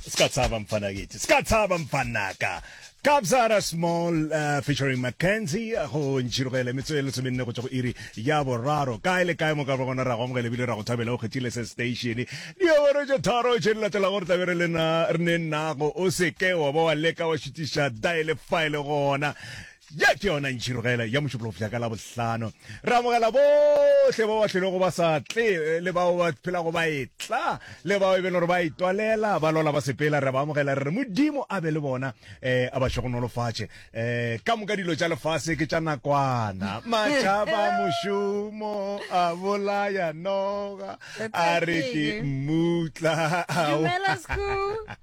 Ska tshaba mfana kithi. Ska tshaba mfanaka. Kabzara Small uh, featuring Mackenzie go ntšhirogele metsotso e lesomenne go tšwa go iri ya boraro kae le kae mo ka gona ra go amogela ebile ra go thabela o kgethile se station diawara tša tharo tše di latelago re tlabe re lena re ne nago o seke wa ba wa leka wa šutiša daele file gona Ye ke yona ntšhirogelo ya Mošuplofsa ka Labohlano. Re amogela bohle bao ba hlwelego ba sa tle le bao ba phelago ba etla le bao e bego gore ba itwalela ba lola ba sepela. Re ba amogela re re Modimo a be le bona, um a ba šogonolofatše. Um ka moka dilo tša lefase ke tša nakwana. Matšhaba mošomo a bolaya noga a re ke mmutla. Dumela, School.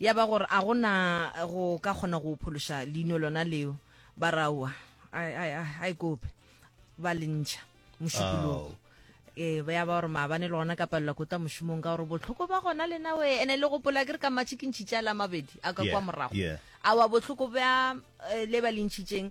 Ya ba gore a go na go ka kgona go phološa leino lona leo, ba re aowa, a e- a e- a e- a e kope, ba le ntšha mošupologo. Ee, ba ya ba gore maabane le gona ka palela ko tla mošomong ka gore bohloko ba gona lena we ene le gopola ke re ka matšhikintšhitše a la mabedi a ka Yeah, kwa morago yeah. awa bohloko bja eh, le ba le ntšhitšeng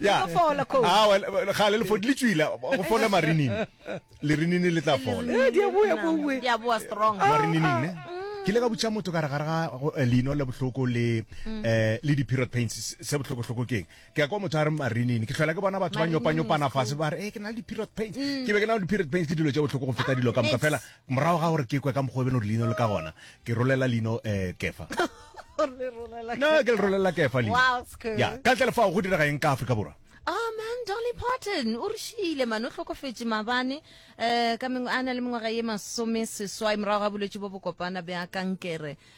ya fola coach ah well ga le fodi le tswila go fola marinini le rinini le tla fola eh dia boya bowe dia boa strong ah, marinini ah. ne ke le ka butša motho ka re gare ga eh, leino le bohloko le mm. eh, le di-period pains se bohloko-hloko keng ke ya kwa motho a re marinini ke tlhola ke bona batho ba nyopanyopana fase ba re e ke na le di-period pains mm. ke be ke na le di-period pains ke dilo tse bohloko go feta dilo ka moka fela Morago ga gore ke kwe ka mokgwa o e beno gore leino le ka gona, ke rolela leino Kefa. Le rolela Kefa. Na ke le rolela Kefa leino. Wow, it's cool. Ya, ka ntle le fao go direga eng ka Afrika Borwa? Oh man, Dolly Parton o re šiile man, o hlokofetše mabane um ka a na le mengwaga ye masome seswai morago ga bolwetši bo bokopana bja kankere.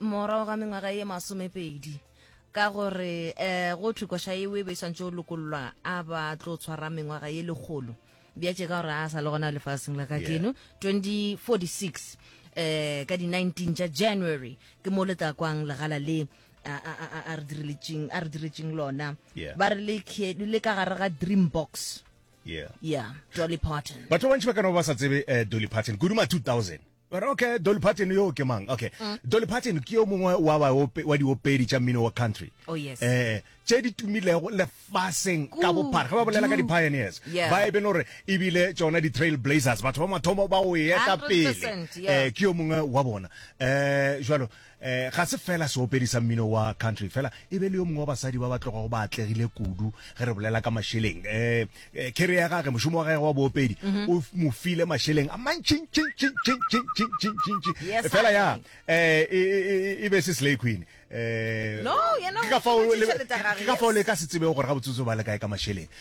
morago ga mengwaga ye masomepedi ka gore um go thwe koša eo e be e swantse o lokollwa a ba tlo tshwara mengwaga ye lekgolo bjatše ka gore a sa le gona lefaseng la ka keno 2046 um ka di-19 tša january ke mo le tla kwang legala le a- a a- a re direletseng- a re diretseng lona Yeah. ba re le khe- le ka gare ga dream box yeah ya dolly parton batho ba bantši ba ka no ba sa tsebe eh, dolly parton kudu ma 2000 Ba re, Okay, Dolly Parton yoo ke mang? Okay. Dolly Parton ke yo mongwe wa baope, wa diopedi tša mmino wa country. Oh, yes. Eh, tše di tumilego lefaseng ka Kudu. bophara. Ge ba bolela ka di-pioneers, Yeah. ba e be no re e bile tšona di-trail blazers, batho ba mathomo ba go e eta pele. 100%, yeah. Eh, ke yo mongwe wa bona. Eh, jwalo, E, ga se fela seopedi sa mmino wa country fela e be le yo mongwe wa basadi ba ba tlogago ba atlegile kudu ge re bolela ka mašeleng um kere ya gage mošomo wa gage wa boopedi mhm. o mo file mašeleng a mantšintšintšintšintšintšintšintšintšintši fela ya um e, e, e be se slay queen um ka fao le ka se tsebego gore ga botsotso ba le kae ka mašeleng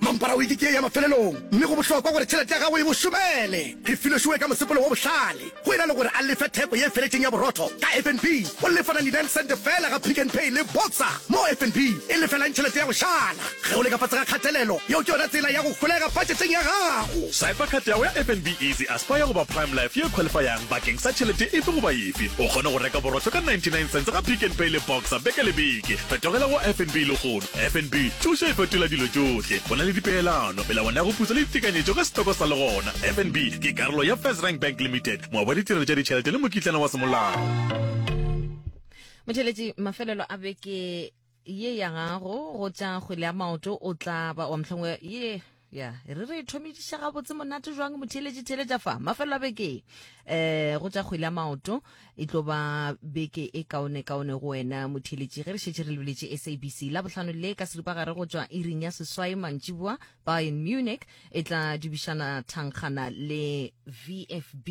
Mampara wiki ke ye ya mafelelong, mme go bohlokwa gore tšhelete ya gago e bo šomele. Re filošiwe ka mosepelo wo bohlale, go e na le gore a lefe theko ye feletšeng ya borotho ka FNB, o lefa 99 sente feela ga Pick n Pay le Boxer, mo FNB e lefelang tšhelete ya go šala. Ge o le ka fase ga kgatelelo, yeo ke yona tsela ya go holega patšheteng ya gago. Saipa khathi ya gago ya FNB Easy Aspire goba Prime Life ye khwalifayang bakeng sa tšhelete efe goba efe. O kgona go reka borotho ka 99 sente ga Pick n Pay le Boxer beke le beke. Fetogela go FNB lehono FNB, Thušo e fetola dilo tšohle. Go na le dipeelano, melawana ya go pusa le ditekanyetšo ka setoko sa le gona. FNB ke karolo ya FirstRand Bank Limited, moabi wa ditirelo tša ditšhelete le mokitlana wa semolao. Motšheletši, mafelelo a beke ye ya gago go tša kgwele ya maoto o tla ba wa mhlongwe ye. ya re re thomediša gabotse monate jwang motheeletše theeletša fa mafelelo a beke um go tša kgwele ya maoto e tlo ba beke e kaone kaone go wena motheeletše ge re šetše re lebeletše sabc la bohlano le ka seripagare go tšwa iring ya seswai mantšiboa bayern munich e tla dubišana thangkgana le vfb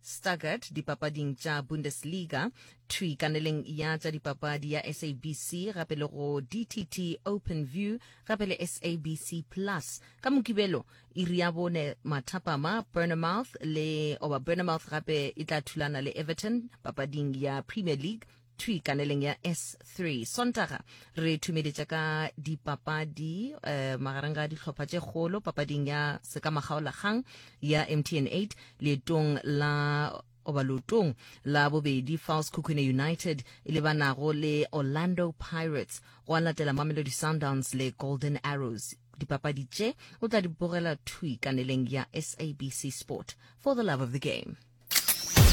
Stuttgart dipapading tša Bundesliga, thwi kaneleng ya tša dipapadi ya SABC gape le go DTT Open View gape le SABC Plus. Ka Mokibelo iri ya bone mathapama Bournemouth le oba Bournemouth gape e tla thulana le Everton papading ya Premier League. thwi kaneleng ya S3 Sontaga re thumeletša ka dipapadi eh, magareng ga dihlopha tše kgolo papading ya sekamagaolakgang ya MTN 8 leetong la goba leotong la bobedi False Khukhune United e lebanago le Orlando Pirates go a latela Mamelodi Sundowns le Golden Arrows dipapadi tše o tla di bogela thwi kaneleng ya SABC Sport for the love of the game